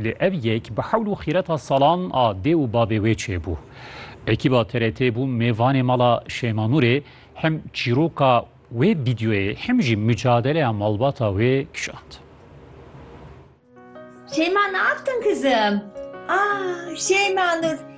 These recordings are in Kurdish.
Lê ev yek bi hewl û xîreta salan a dê û bavê wê çêbû. Ekîba TRT bû mêvanê mala Şeyma Nûrê, hem çîroka wê vîdyoyê hem jî micadeleya malbata wê kişand. Şeyma ne yaptın kızım? Aa Şeyma Nur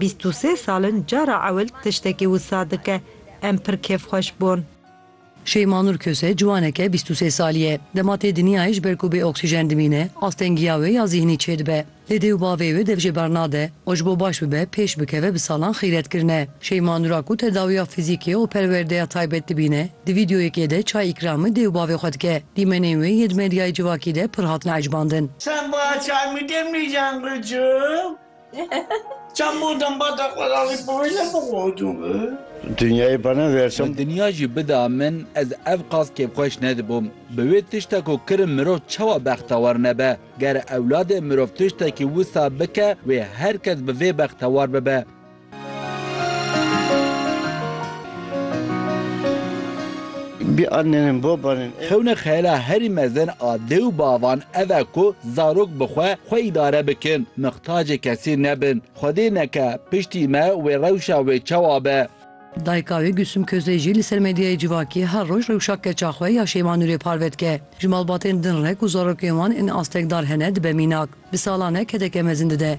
Bîst û sê sal in cara ewil tiştekî wisa dike. Em pir kêfxweş bûn. Şeyma Nur Köse ciwaneke bîst û sê salî ye. Dema tê dinyayê ji ber ku bê oksîjen dimîne, astengiya wê ya zîhnî çêdibe. Lê dê û bavê wê dev jê bernade û ji bo baş bibe pêş bikeve bi salan xîret kirine. Şeyma Nur a ku tedawiya fîzîkê û perwerdeya taybet dibîne, di vîdyoyekê de çay îkramê dê û bavê xwe dike. Dîmenên wê yê di medyayê civakî de pir hatine ecbandin. Seba çay bike mîjan qicim. Çemû dembata xwe ra wî proje bixwodû bi. Dinyayê bana versin. Dinya jî bida min ez ev qas kêfxweş nedibûm. Bi wê tişta ku kirim mirov çawa bextewar nebe. Ger ewladê mirov tiştekî wisa bike wê her kes bi vê bextewar bibe. Bi annenin babanin. Xewna xeyala herî mezin a dê û bavan ev e ku zarok bi xwe xwe îdare bikin, mixtacê kesî nebin. Xwedê neke piştî me wê rewşa wê çawa be. Dayika wê Gulsum Kozey jî li ser medyayê civakî her roj rewşa keça xwe ya Şeyma Nûrê parve dike. Ji malbatên din re ku zarokên wan ên astekdar hene dibe mînak. Bi salan e kedeke mezin dide.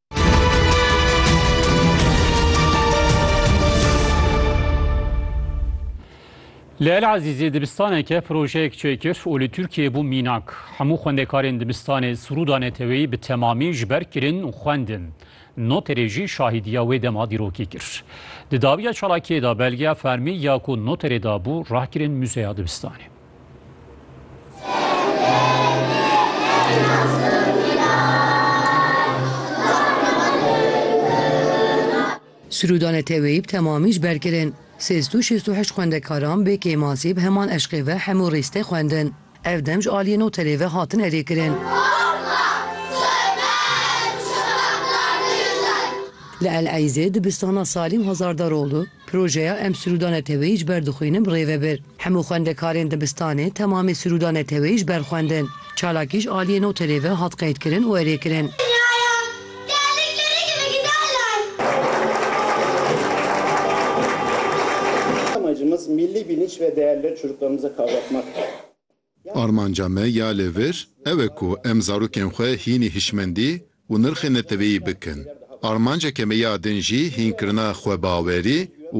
Li El Azîzê dibistaneke projeyek çêkir û li Tirkiyeyê bû mînak. Hemû xwendekarên dibistanê Sûrûda Neteweyî bi temamî ji ber kirin û xwendin. Noterê jî şahîdiya wê dema dîrokê kir. Di dawiya çalakiyê de belgeya fermî ya ku noterê dabû rahkirin muzeya dibistanê. Sirûda neteweyî bi temamî ji ber kirin. Sêz tu şêst û heşt xwendekaran bê kêmasî bi heman eşqê ve hemû rîstê xwendin. Ev dem ji aliyê noterê ve hatin erê kirin. Li El Eyzê dibistana Salîm Hazardaroglu Projeya Em Siruda Neteweyî ji ber dixwînin birêve bir. Hemû xwendekarên dibistanê temamê siruda neteweyî ji ber xwendin. Çalakî ji aliyê noterê ve hat qeydkirin û erê kirin. Armanca me ya li vir ew e ku em zarokên xwe hînî hişmendî û nirxê neteweyî bikin. Armanceke me ya din jî hînkirina xwebawerî û